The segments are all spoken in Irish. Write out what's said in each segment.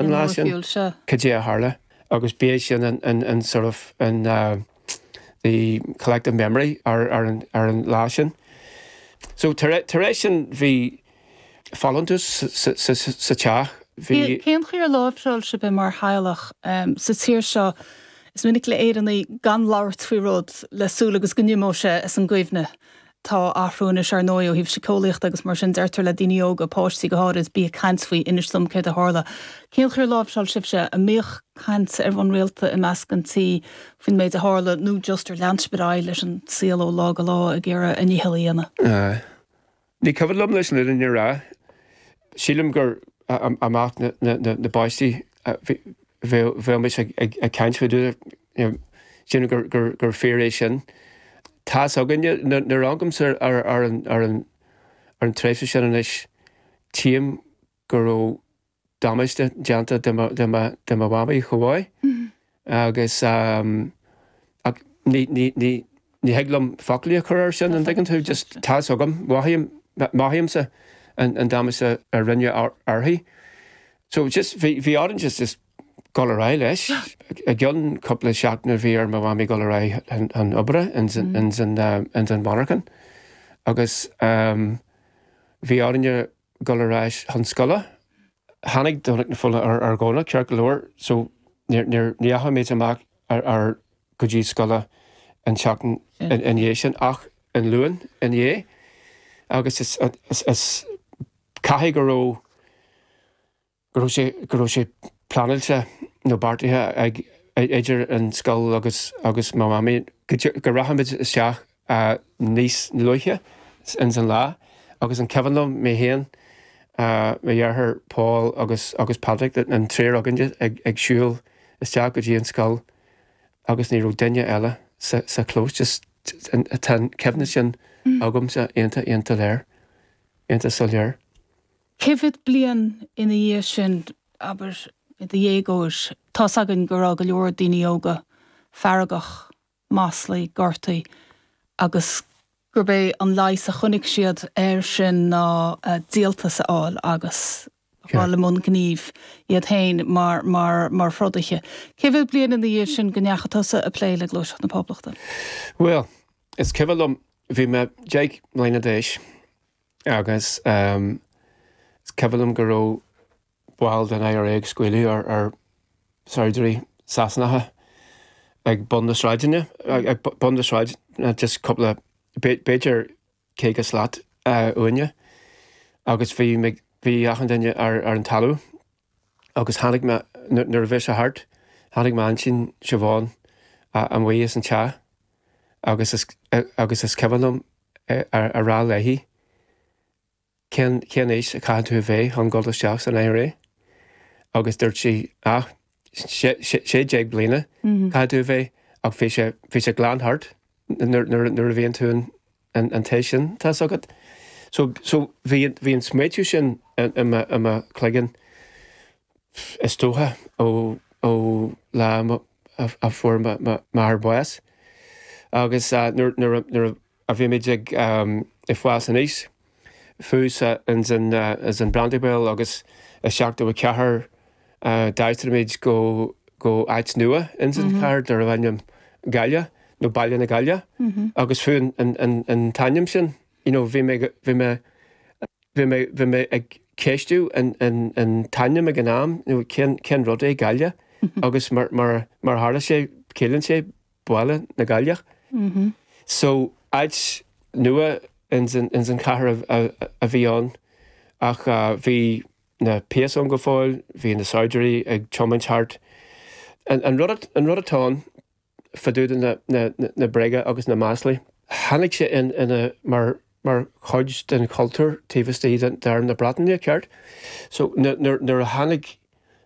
an lá sin, cad é a tharla. Agus ba é sin an sort of the collective memory ar an lá sin. So tar éis sin bhí folúntas sa teach, bhí. Cén chaoi ar láimhseáil sibh mar theaghlach sa tír seo, is minic le Éireannaigh gan labhairt faoi rud le súil agus go n-imeodh sé as an gcuimhne. Tá athrú anois, ar ndóigh, ó thaobh siceolaíochta agus mar sin deirtear le daoine óga, páistí go háirid, bí ag caint faoi, inis dom céard a tharla. Cén chaoi ar láimhseáil sibhse, an mbíodh caint ar bhonn rialta i measc an tí faoin méid a tharla nó just ar lean sibh ar aghaidh leis an saol ó lá go lá ag iarraidh bhur ndícheall a dhéanamh? Ní cuimhin liom leis an fhirinne a rá. Sílim gur i measc na bpáistí bheadh muid ag caint faoi rud Níl. Sílim gur fíor é sin. Tá's againne, nuair a amharcaimse ar an tréimhse sin anois, tchím go raibh damáiste déanta do mo mhamaí chomh maith agus, ach ní thig liom foclaí a chur air sin, an dtuigeann tú, just tá's agam, mothaímse an damáiste a rinneadh uirthi. So just, bhí orainn just dul ar aghaidh leis. I gcionn cúpla seachtaine bhí ar mo mham dul ar aghaidh chun oibre ins an mhonarchan agus bhí orainne dul ar ais chun scoile. Tháinig Domhnach na Fola ar Dhomhnach ceart go leor so níor ndeachaigh muid ar ais go dtí an scoil an tseachtain ina dhiaidh sin ach an Luan ina dhiaidh agus caithfidh go raibh go raibh sé pleanáilte nó beartaithe ag idir an scoil agus mo Mhamaí go rachaimis isteach níos luaithe ins an lá agus is cuimhin liom mé féin, mo dheartháir Pól agus Pádraig, an triúr againn ag siúl isteach go dtí an scoil agus ní raibh duine eile sa chlós just tá an chuimhne sin agamsa iontach, iontach léir, iontach soiléir. Cé mhéad bliain ina dhiaidh sin, abair, i do dhéagóir, tá's againn go raibh go leor daoine óga feargach, maslaithe, gortaithe agus gurb é an leigheas a chonaic siad air sin ná díoltas a fháil agus a ghabháil i mbun gnímh iad féin mar throdaithe. Cé mhéad bliain ina dhiaidh sin go ndeachaigh tusa ag plé le Gluaiseacht na Poblachta? Bhuel, is cuimhin liom, bhí mé deich mbliana d'aois. Agus is cuimhin liom go raibh baill den IRA ag scaoileadh ar shaighdiúirí Sasanacha ag bun na sráide, ag bun na sráide just cúpla, b'fhéidir caoga slat uainne. Agus bhí, bhí achan duine ar an talamh. agus tháinig mé, nuair a bhí sé thart, tháinig m'aintín Siobhán amuigh as an teach agus, agus is cuimhin liom a rá léi, cén, cén aois a chaithfidh tú a bheith chun dul isteach san IRA? Agus dúirt sí, á, sé, sé, sé déag bliana chaithfidh tú a bheith ach bhí sé, bhí sé glan thart nuair, nuair, nuair a bhíonn tú in, an an t-aois sin, tá's agat. So, so, bhí, bhí an smaoitiú sin i mo, i mo chloigeann, is dócha, ó, ó lá a, a, a fuair mo, m'athair bás. Agus nuair, nuair a, nuair a bhí muid ag fás aníos, fosta ins an Brandywell agus i 74 d'aistrigh muid go áit nua ins an chathair darbh ainm Galliagh nó Ballynagalliagh agus fiú an t-ainm sin you know bhí mé bhí mé bhí mé bhí mé ag ceistiú an an an t-ainm ag an am nó cén cén rud é Galliagh agus mar mar mar tharla sé ciallaíonn sé Baile na gCailleach so áit nua ins an chathair a bhí ann ach bhí na péas ann go fóill, bhí na saighdiúirí ag tiomáint thart. An rud atá ann fadúda na bréaga agus na maslaí. Tháinig sé ina, mar mar chuid den chultúr taobh istigh d'Arm na Breataine, ceart? So, nuair a tháinig,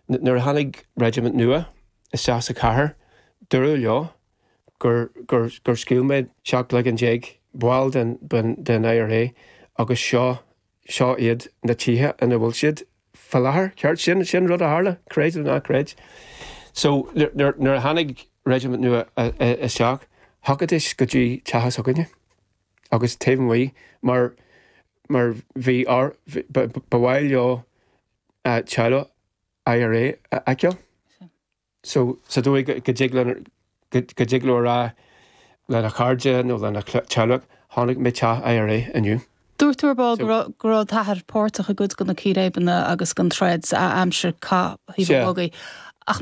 nuair a tháinig reisimint nua isteach sa chathair, dúradh leo gur, gur, gur scaoil muid seacht gcloigeann déag baill den, den, den IRA agus seo, seo iad na tithe ina bhfuil siad fá láthair, ceart? Sin, sin rud a tharla, creid nó ná creid. So, nuair, nuair, nuair a tháinig reisimint nua isteach, thiocfaidís go dtí teach s'againne. agus taobh amuigh mar mar bhí ár ba mhaith leo teaghlaigh IRA a fheiceáil so sa dóigh go dtig linn go dtig leo a rá lena chairde nó lena teaghlaigh chonaic mé teach IRA inniu. Dúirt tú ar ball go raibh go raibh d'athair páirteach i gcuid de na círéibeanna agus den troid a aimsir cath Thaobh an Bhogaigh ach